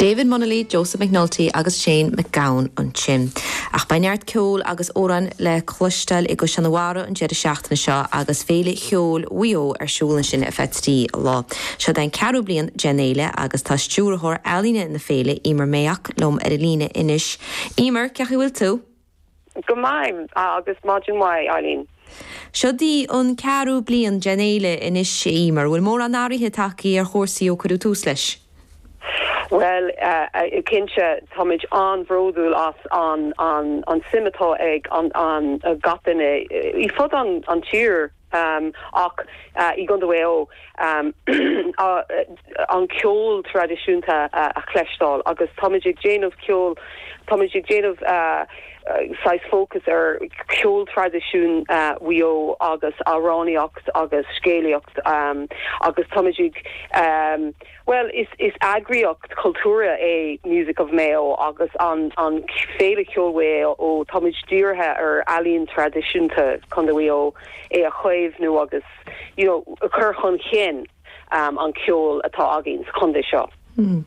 David Munnelly, Joseph McNulty agus Shane MacGowan ansin. Ach beidh neart ceoil agus amhráin le cloisteáil i gCaisleán an Bharraigh an deireadh seachtaine seo agus Féile Cheoil Mhaigh Eo ar siúl ansin ar feadh trí lá. Seo é an ceathrú bliain den fhéile agus tá stiúrthóir ealaíne na féile, Emer Mayock, liom ar an líne anois. Emer, cén chaoi a bhfuil tú? Go maith, agus maidin mhaith, Eileen. Seo í an ceathrú bliain den fhéile anois, a Emer. Bhfuil mórán athruithe tagtha ar chúrsaí ó cuireadh tús leis? Bhuel, cinnte, táimid an-bhródúil as an suim atá ag gach duine fud fad an tír. Ach i gCondae Mhaigh Eo an ceol traidisiúnta a chloisteáil agus tá muid ag déanamh ceol, tá muid ag déanamh saghas fócas ar cheol traidisiúnta Mhaigh Eo agus amhránaíocht agus scéalaíocht agus tá muid ag. Bhuel, is eagraíocht chultúrtha é Music of Mayo agus an Féile Cheoil Mhaigh Eo. Tá muid dírithe ar ealaín traidisiúnta Chontae Mhaigh Eo, é a chaomhnú agus you know a chur chun chinn an ceol atá againn sa chontae seo. Hmm.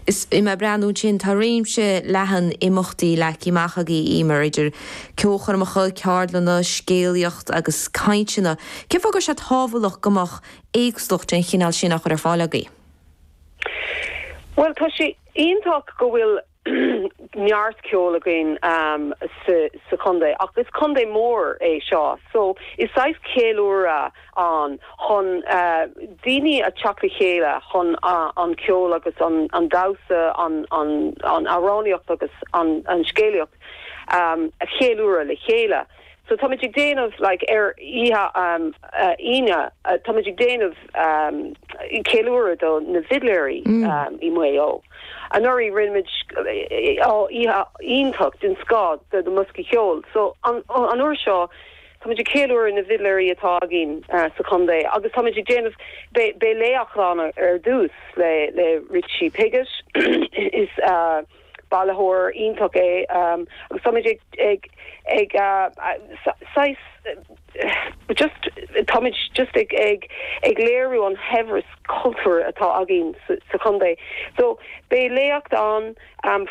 Bhí mé ag breathnú ansin, tá réimse leathan imeachtaí leagtha amach agaibh, Emer, idir ceolchoirmeacha, ceardlanna, scéalaíocht agus cainteanna. Cén fáth go raibh sé tábhachtach go mbeadh éagsúlacht den chineál sin á chur ar fáil agaibh? Bhuel, tá sé iontach go bhfuil neart ceoil againn sa chontae ach is contae mór é seo so is saghas ceiliúradh ann chun daoine a theacht le chéile chun an ceol agus an damhsa, an amhránaíocht agus an scéalaíocht a cheiliúradh le chéile. So táimid ag déanamh, like, ar oíche Aoine, táimid ag déanamh ceiliúradh do na bhfidléirí i Maigh Eo. Anuraidh rinne muid oíche iontach den scoth do na mboscaí ceoil. So an uair seo táimid ag ceiliúradh na bhfidléirí atá againn sa chontae agus táimid ag déanamh, beidh léacht ann ar dtús le Richie Piggott, is. bailitheoir iontach é agus táimid ag, ag, saghas, just, táimid just ag, ag, ag léiriú an shaibhreas cultúir atá againn sa chontae. So, beidh léacht ann.